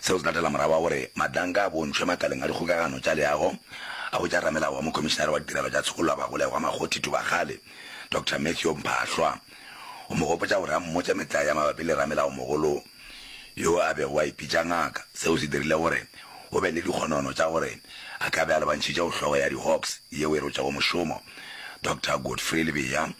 Seo se latela morago ga gore Madlanka a bontšhwe makaleng a dikgokagano tša leago a go tša ramelao wa Mokhomišinare wa Ditirelo tša Tshokollo ya Bagolegwa Makgothi Thubakgale, Doctor Matthew Mphahlwa, go mo gopotša gore a mmotše metlae ya mabapi le ramelaomogolo yo a bego a ipitša Ngaka. Seo se dirile gore go be le dikgonono tša gore a ka be a lebantšhitše go hlogo ya di-Hawks yeo e rotšego mošomo, Doctor Godfrey Lebeya,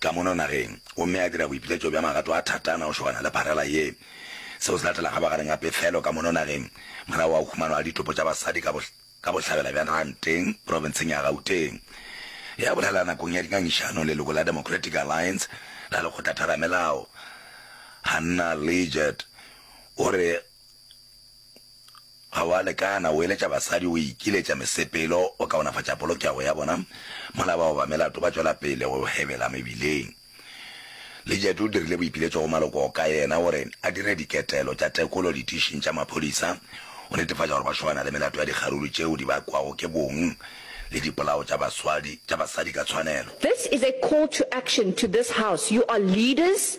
Ka mono nageng, gomme a dira boipiletšo bja magato a thatana go šogana le pharela ye. Seo se latela gabagareng ga pefelo ka mono nageng, morago ga khumano ya ditopo tša basadi ka ka bohlabela bja Randeng, profenseng ya Gauteng. Ge a bolela nakong ya dingangišano, leloko la Democratic Alliance la Lekgotla-Theramelao, Hannah Leggett, o re, Ga wa lekana, o eletša basadi, o ikiletša mesepelo, o kaonafatša polokego ya bona, mola bao ba melato ba tšwela pele go hebela mebileng. Lijet o dirile boipiletšo go maloko ka yena gore a dire diketelo tša tekolo ditišing tša maphodisa go netefatša gore ba šobana le melato ya dikgaruru tšeo di bakwago ke bong le dipolao tša baswadi tša basadi ka tshwanelo. This is a call to action to this house, you are leaders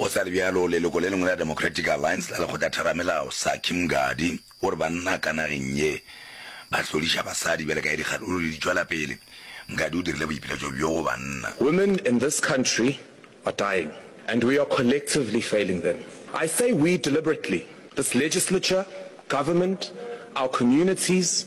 Go sa le bjalo, leloko le lengwe la Democratic Alliance la Lekgotla Theramelao, Saki Mngadi, o re banna ka nageng ye ba hloriša basadi bjale ka ge dikgahlolo di di tšwela pele. Mngadi o dirile boipiletšo bjo go banna. Women in this country are dying and we are collectively failing them. I say we deliberately, this legislature, government, our communities,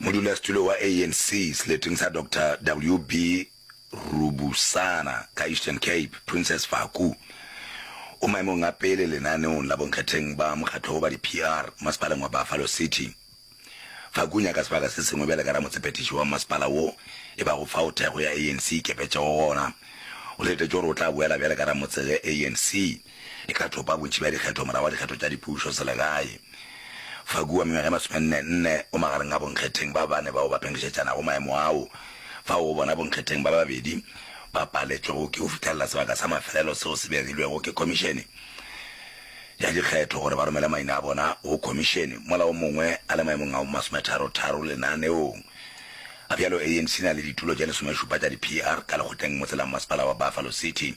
Modulasetulo wa ANC seleteng sa Doctor WB Rubusana ka Eastern Cape, Princess Faku, o maemong a pele lenaneong la bonkgetheng ba mokgatlo wo ba di-PR masepaleng wa Buffalo City. Faku o nyaka sebaka se sengwe bjale ka ramotsepetiši wa masepala wo e bago fao thekgo ya ANC e ikepetšego gona. O letetše gore o tla boela bjale ka ramotse ge ANC e ka thopa bontši bja dikgetho morago ga dikgetho tša dipušo selegae. Fagu wa mengwaga e masomenne-nne o magareng ga bonkgetheng ba bane bao ba pengišetšanago maemo ao, fao go bona bonkgetheng ba babedi ba paletšwego ke go fihlelela sebaka sa mafelelo seo se begilwego ke Khomišene ya Dikgetho gore ba romele maina a bona go Khomišene mola o mongwe a le maemong a masometharo-tharo lenaneong a bjalo. ANC e na le ditulo tše lesomešupa tša di-PR ka lekgotleng motse la mmasepala wa Buffalo City.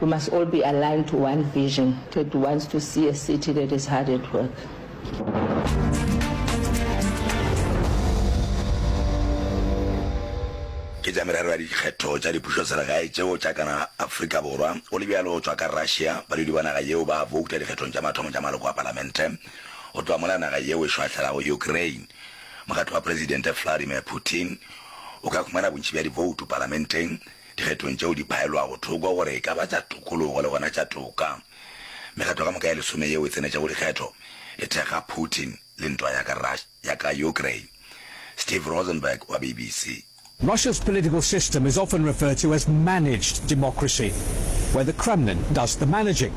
We must all be aligned to one vision that wants to see a city that is hard at work. Ke tša merero ya dikgetho tša dipušoselegae tšeo tša kana Afrika Borwa, go le bjalo go tšwa ka Russia, badudi ba naga yeo ba bouta dikgethong tša mathomo tša maloko a palamente, go tloga mola naga yeo e šwahlelago Ukraine. Mokgatlo wa Presidente Vladimir Putin o ka khumana bontši bja diboutu palamenteng, dikgethong tšeo di phaelwago thoko gore e ka ba tša tokologo le gona tša toka. Mekgatlo ka moka e lesome yeo e tsenetšego dikgetho e thekga Putin le ntwa ya ka Russia ya ka Ukraine. Steve Rosenberg wa BBC. Russia's political system is often referred to as managed democracy, where the Kremlin does the managing.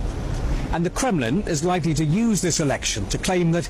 And the Kremlin is likely to use this election to claim that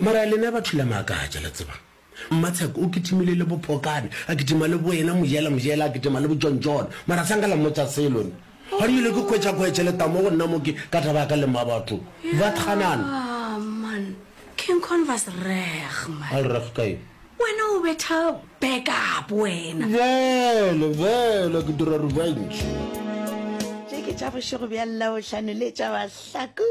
mara lena ba thula maakatša le tseba mmatsheko o kitimile le bopokane a kitima le boena mojela mojela a kitima le bojonjone mara sanka la mmotsa selone ga rile ke kgwetšakgwetše letamo go nna moke ka taba ya ka le mma batho ba tganana ah, a le reg kae Wena o betha back up wena. Bjale, bjale ke dira revenge. Tše ke tša bošego bja Labohlano le tša Mahlaku.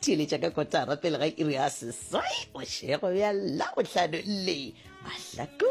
Theeletša ka kotara pele ga iri ya seswai bošego bja Labohlano le Mahlaku.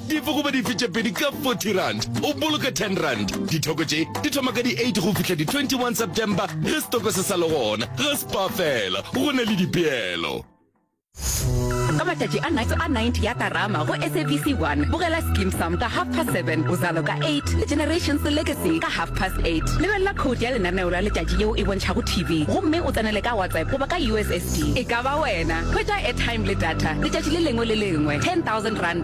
Dife goba dife tše pedi ka 40 rand, o boloka 10 rand. Dithoko tše di thoma ka di 8 go fihla di 21 September ge setoko se sa le gona. Ga Spar fela, go na le dipeelo. Ka matšatši a night a 90 ya Karama go SABC 1, bogela Skeem Saam ka half past 7, Uzalo ka 8 le Generations Legacy ka half past 8. Lebelela code ya lenaneo la letšatši yeo e bontšhago TV gomme o tsenele ka WhatsApp goba ka USSD. E ka ba wena. Hwetša airtime le data letšatši le lengwe le lengwe, R10,000.